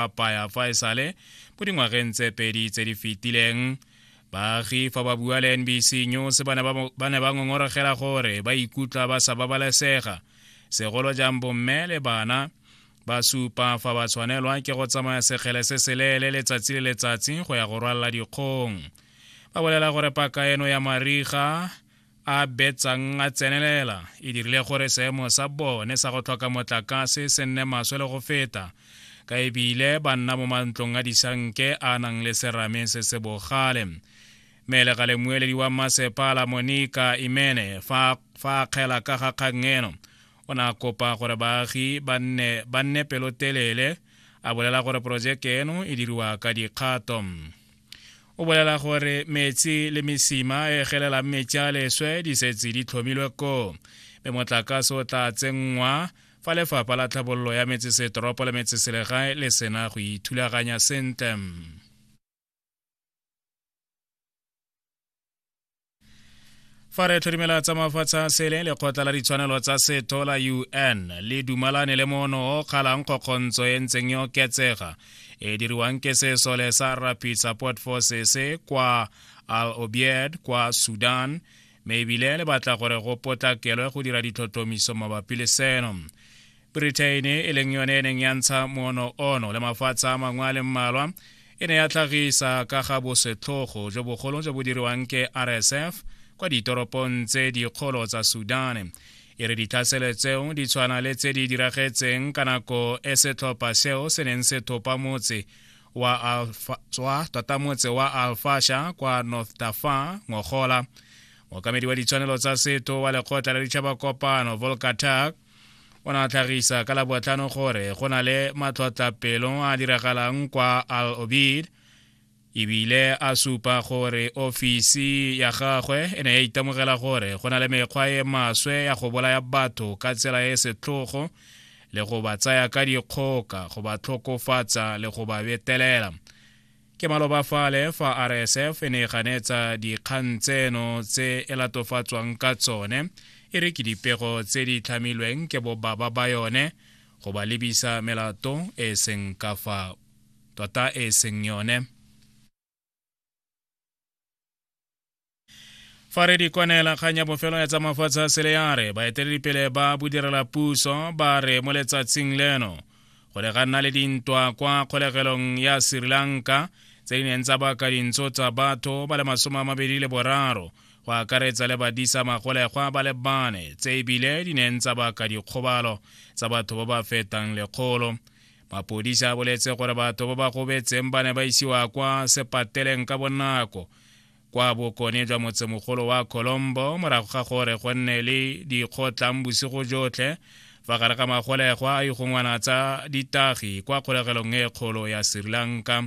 apaya fa e sale mo dingwageng tse pedi tse di fetileng baagi fa ba bua le nbc news ba ne ba ngongorogela gore ba ikutlwa ba sa babalesega segolo jang bomme le bana ba supa fa ba tshwanelwa ke go tsamaya sekgele se seleele letsatsi le letsatsi go ya go rwalela dikgong ba bolela gore paka eno ya mariga a betsang a tsenelela e dirile gore seemo sa bone sa go tlhoka motlakase se nne maswe le go feta ka ebile ba nna mo mantlong a disanke a nang le serame se se bogale mele ga lemueledi wa masepala monika imene fa a kgela ka ga kgang eno o ne a kopa gore baagi ba nne pelotelele a bolela gore porojeke eno e diriwa ka dikgato o bolela gore metsi le mesima e gelelang metsi a leswe di setse di tlhomilwe koo mme motlakase o tla tsenngwa fa lefapha la tlhabololo ya metsesetoropo le metseselegae le sena go ithulaganya sentle fa re tlhodimela tsa mafatshe a sele lekgotla la ditshwanelo tsa setho la un le dumalane le mono o kgalang kgokgontso e ntseng e oketsega e diriwang ke sesole sa rapid support forces kwa al obied kwa sudan mme ebile le batla gore go potlakelwe go dira ditlhotlhomiso mabapi le seno britain e leng yone e neng ya ntsha moono ono le mafatshe a mangwe a le mmalwa e ne ya tlhagisa ka ga bosetlhogo jo bogolo jo bo diriwang ke rsf kwa ditoropong tse dikgolo tsa sudan e re ditlhaselo tseo di tshwana le tse di diragetseng ka nako e setlhopha seo se neng se thopa motse wa alfa tota motse wa alfasha kwa north dafa ngogola mookamedi wa ditshwanelo tsa setho wa lekgotla la ditšhaba kopano volkatak o ne a tlhagisa ka labotlhano gore go na le matlhotlapelo a diragalang kwa al obid ebile a supa gore ofisi ya gagwe e ne ya itemogela gore go na le mekgwa e maswe ya go bolaya batho ka tsela e setlhogo le go ba tsaya ka dikgoka go ba tlhokofatsa le go ba betelela ke maloba fale fa rsf e ne e ganetsa dikgang tseno tse e latofatswang ka tsone e re ke dipego tse di tlhamilweng ke bobaba ba yone go ba lebisa melato e e seng ka fa tota e e seng yone fa re di kwanela kgang ya bofelo ya tsa mafatshe a sele ya re baeteledipele ba bodirela puso ba re mo letsatsing leno go ne ga nna le dintwa kwa kgolegelong ya sri lanka tse di neng tsa baka dintso tsa batho ba le masome a mabedi le boraro go akaretsa le badisa magolegwa ba le bane tse ebile di neng tsa baka dikgobalo tsa batho ba ba fetang lekgolo mapodisa a boletse gore batho ba ba gobetseng ba ne ba isiwa kwa sepateleng ka bonako kwa bokone jwa motsemogolo wa colombo morago ga gore go nne le dikgotlang bosigo jotlhe fa gare ga magolegwa a ikgongwana tsa ditagi kwa kgolegelong e kgolo ya sri lanka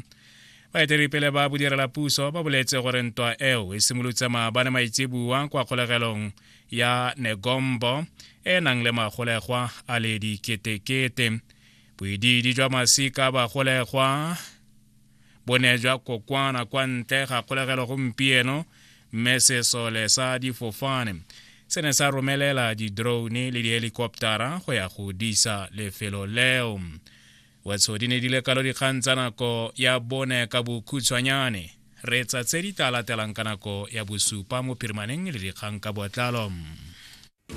baeteledipele ba bodirela puso ba boletse gore ntwa eo e simolotse maabane maitsebua kwa kgolegelong ya negombo e nang le magolegwa a le diketekete boidiidi jwa masika bagolegwa bo ne jwa kokwana kwa ntle ga kgolegelo gompieno mme sesole sa difofane se ne sa romelela di-drone le dihelikoptara go ya go disa lefelo leo wetso di ne di le kalo dikgang tsa nako ya bone ka bokhutshwanyane re tsa tse di tla latelang ka nako ya bosupa mo phirimaneng le dikgang ka botlalo